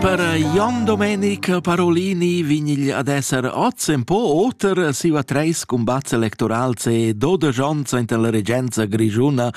Per Jon Domenic Parolini vignigl ad esser oz en po oter siva treis cumbats electorals e dodisch onns enta la regenza grischuna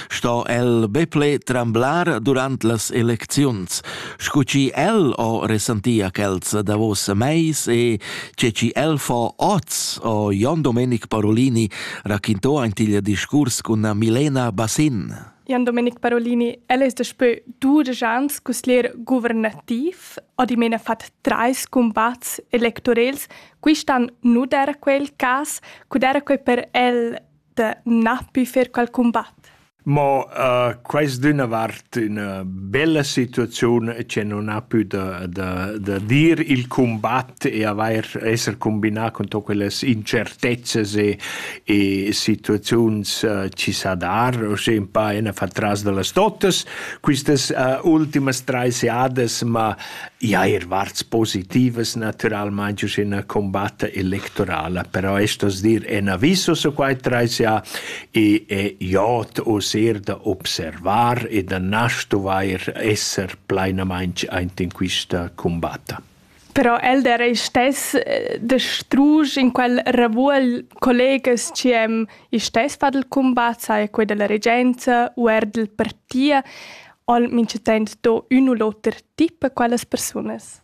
sto el beple tremblar durant las elecziuns. Scu chi el ho resantia quels davos meis e che chi el fo oz, o Jon Domenic Parolini raquinto aintigl discurs cun Milena Bassin. Jan Domenic Parolini, el es daspö dudesch ans cusglier guvernativ o dimena fat trais cumbats electorels. Quist'an nu d'eira quel cas, cu d'eira quai per el da na pü fer qual cumbat? Mo uh, quest d'üna vart üna bella situaziun che non ha più da, da, da dir il combat e avair esser combinà con to quellas incertezzas e e situaziuns uh, ci sa dar, o se un pa ena fa tras de las totas. Quistas uh, ultimas treis jades, ma ja er varts positivas naturalmente in una combatta electorala, però estos dir en aviso su quai treis ja e è jot o ser da observar e da nasto vair esser plenamente aint in quista combatta. Però el d'era ei stess eh, da strusch in quel ravuol collegas chi hem i stess fat il cumbat, sai quei dalla regenza u er dal partia, all minchatant do ün u l'oter tip a quellas persunas.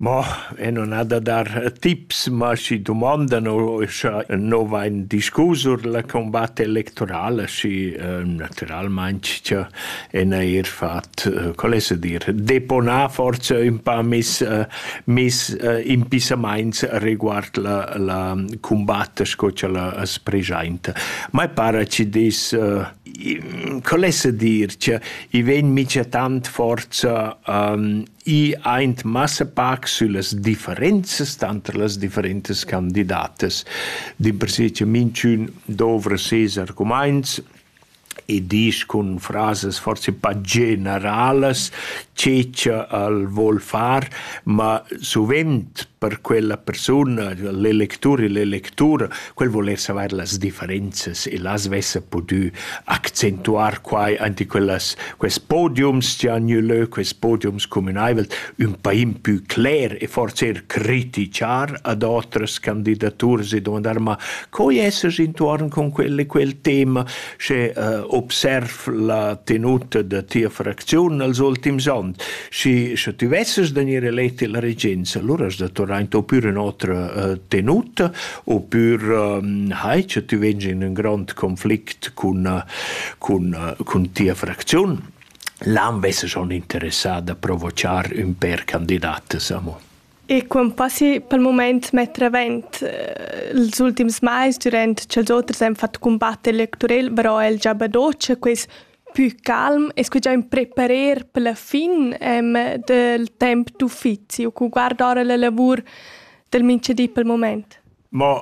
Ma e non ha da dar tips, ma si domandano scha no vain discusur la combatte electorale, si eh, naturalmente e neir fat qual es a dir deponar forsa ün pa mis mis impissamaints riguard la la cumbatta sco cha la as preschainta. Mai para chi dess qual es a dir cha i vegn micha tant forza i aint massa pac süllas differenzas tanter las differentas candidatas. Dimpersè cha minchün dovra ses argumaints e disch cun frasas forsa pa generalas che cha el voul far, ma suvent per quella persuna, l'electur e l'electura, quel voul eir savair las differenzas e las vessa pudü accentuar quai aint in quellas quest podiums chi han gnü lö, quest podiums cumünaivel, ün pa impü cler e forsa eir critichar ad otras candidaturas e dumandar: «Ma Coi essas intuorn cun quel e quel tema sche uh, observ la tenuta da tia fracziun els ultims ans. Schi, sche tu vesses da gnir eleti la regenza, allura has da tornar in pür in otra uh, tenuta, oppür um, hai che tu vegns in un grand conflict cun, uh, cun, uh, cun tia fracziun. L'an vesse schon interessà da provochar un per candidates, amo. E quant possi pel mumaint metter avent ils ultims mais dürant cha'ls oters han fat cumbatter l'electorel, però el già badocha quist pü calm e scu già ün preparer per la fin del temp d'uffizi u cu guarda ora la lavur del minchadi pel mumaint? Mo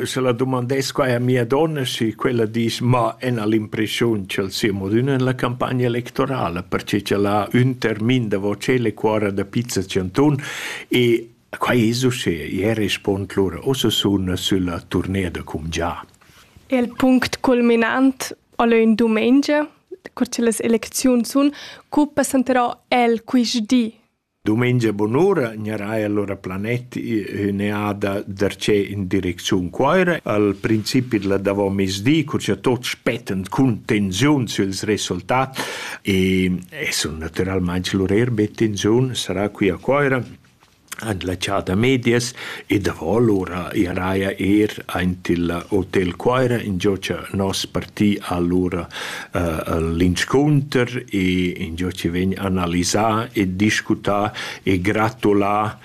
Scha la dumandess quai a mia donna, schi quella disch: «Ma ena l'impreschiun cha'l sia modüna in la campagna electorala, perche ch'el ha ün termin davo tschel e cuorra da pizza tschantun». E quai es uschea. I respond lura: «Ussa sun sülla turnea da cumgià». Il punct culminant al e ün dumengia, cur cha las elecziuns sun, cu passenterà el quist di? Dumengia bunura gnaraja lura planet ün'eada darcheu in direcziun Cuoira. Al principi d'la davomezdi, cur cha tuot spettan cun tensiun süls resultats e e sun natüralmaing lur eir be tensiun, sarà qui a Cuoira an la Chà da Medias e davo lura gnaraja eir aint il Hotel Cuoira, ingio cha nos parti ha lura l'inscunter e ingio chi vegn analisà e discutà e gratulà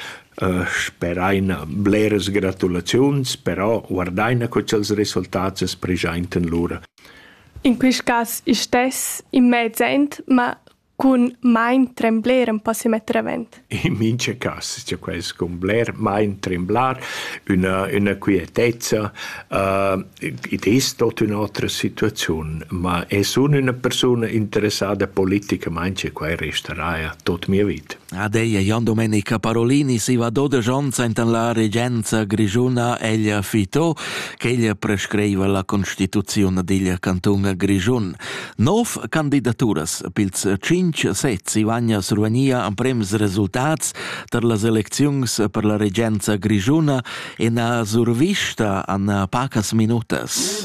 speraina bleras gratulaziuns, però guardaina co cha'ls resultats es preschaintan lura. In quist cas istess in mez aint, ma cun mein trembler empau semetter avent. In mincha cas, cioè quel scumbler, mein tremblar, üna üna quietezza, uh, id es tot ün'otra situaziun, ma e sun üna persuna interessada politicamaing e quai restaraja tot mia vita. Adeia Jan Domenica Parolini si va dodesch ons enten la regenza grigiuna ella fito, ch'ella prescreiva la constituziun digl canton Grigiun. Nov candidaturas pils tschintg sez Ivagna Survania emprems resultats tar las elecziuns per la regenza grischuna e na survista a pacas minutas.